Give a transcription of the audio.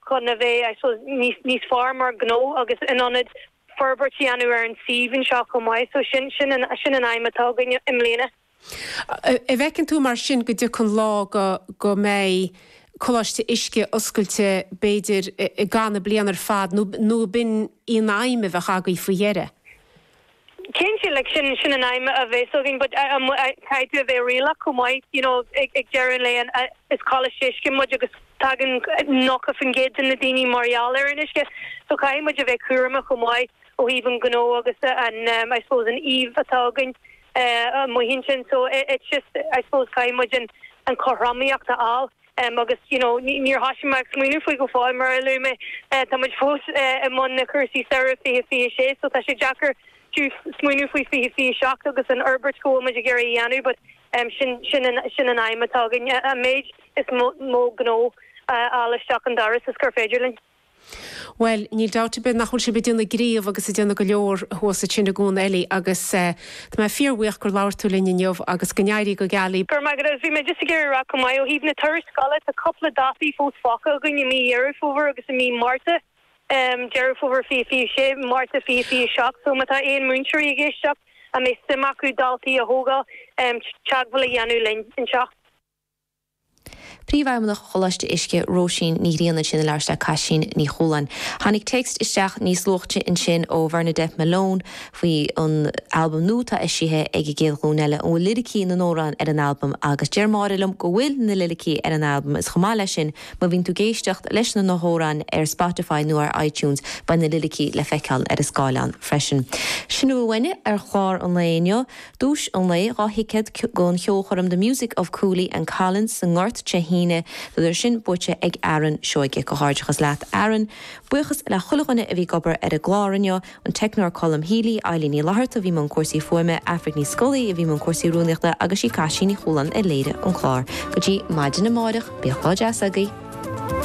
chun a bheith, I suppose, níos fearr mar ghnó agus in ann forbairt a dhéanamh ar an suíomh anseo chomh maith. So sin, sin an aidhm atá againn i mbliana. An bhfeiceann tú mar sin go dtiocfaidh lá go mbeidh Coláiste Uisce oscailte b'fhéidir i gcaitheamh na bliana ar fad nó b'in í an aidhm a bheadh agaibh faoi dheireadh? Cinnte, like, sin, sin an aidhm a bheas againn, but caithfidh tú a bheith réalaíoch chomh maith, you know, ag, ag deireadh an lae an, is coláiste uisce muid agus tagann 90% de na daoine mar gheall ar an uisce, so caithfidh muid a bheith cúramach chomh maith ó thaobh an ghnó agus an eh, I suppose an íomhá atá againn eh, amuigh ansin, so it's just, I suppose caithfidh muid an, an chothromaíocht a fháil. em agus you know níor thosaigh mé ag smaoineamh faoi go fóill mar a luaigh mé eh tá muid fós eh i mbun na cúrsaí samhraidh 2026 so tá sé deacair fiú smaoineamh faoi 2027 agus an fhorbairt go bhfuil muid ag iarraidh a dhéanamh but em sin sin an sin an aidhm atá againn an méid is mó gnó a fháil isteach an doras is gur féidir linn. Bhuel, níl dabht ar bith nach bhfuil sibh ag déanamh gnímh agus ag déanamh go leor thuas ansin i gCuan Eilí agus tá mé fíorbhuíoch gur labhair tú linn inniu agus go n-éirí go geal. Go raibh maith agat, bhí mé just ag iarraidh a rá chomh maith, ó thaobh na turais scoile, tá cúpla dátaí fós fágtha againn i mí Dheireadh Fómhair agus i mí Márta, Deireadh Fómhair 2026, Márta 2027, so má tá aon múinteoirí ag éisteacht a mbeadh suim acu daltaí a thógáil, teagmháil a dhéanamh linn anseo. Príomhfheidhmeannach Choláiste Uisce, Róisín Ní Ghrianna ansin ag labhairt le Caitlín Ní Chualáin. Tháinig téacs isteach níos luaithe ansin ó Bhernadette Malone faoi an albam nua atá eisithe ag An gCéad Ghlúin Eile, an bhfuil liricí na n-amhrán ar an albam agus deir Máire liom go bhfuil na liricí ar an albam is chomh maith leis sin má bhíonn tú ag éisteacht leis na na hamhráin ar Spotify nó ar iTunes beidh na liricí le feiceáil ar an scáileán freisin. Sin a bhfuil againn ar chlár an lae inniu. Duais an lae, dhá thicéad don cheolchoirm The Music of Cooley and Collins sa nGort Dé hAoine, tá an duais sin buaite ag Aaron Seoige. Comhghairdeachas leat Aaron. Buíochas le chuile dhuine a bhí ag obair ar an gclár inniu, an teicneoir Colm Healy, Eilín Ní Fhlaithearta a bhí i mbun cúrsaí fuaime, Aifric Ní Scolaí a bhí i mbun cúrsaí rúnaíochta agus sí Caitlín Ní Chualáin a léirigh an clár. Go dtí maidin amáireach, bíodh lá deas agaibh.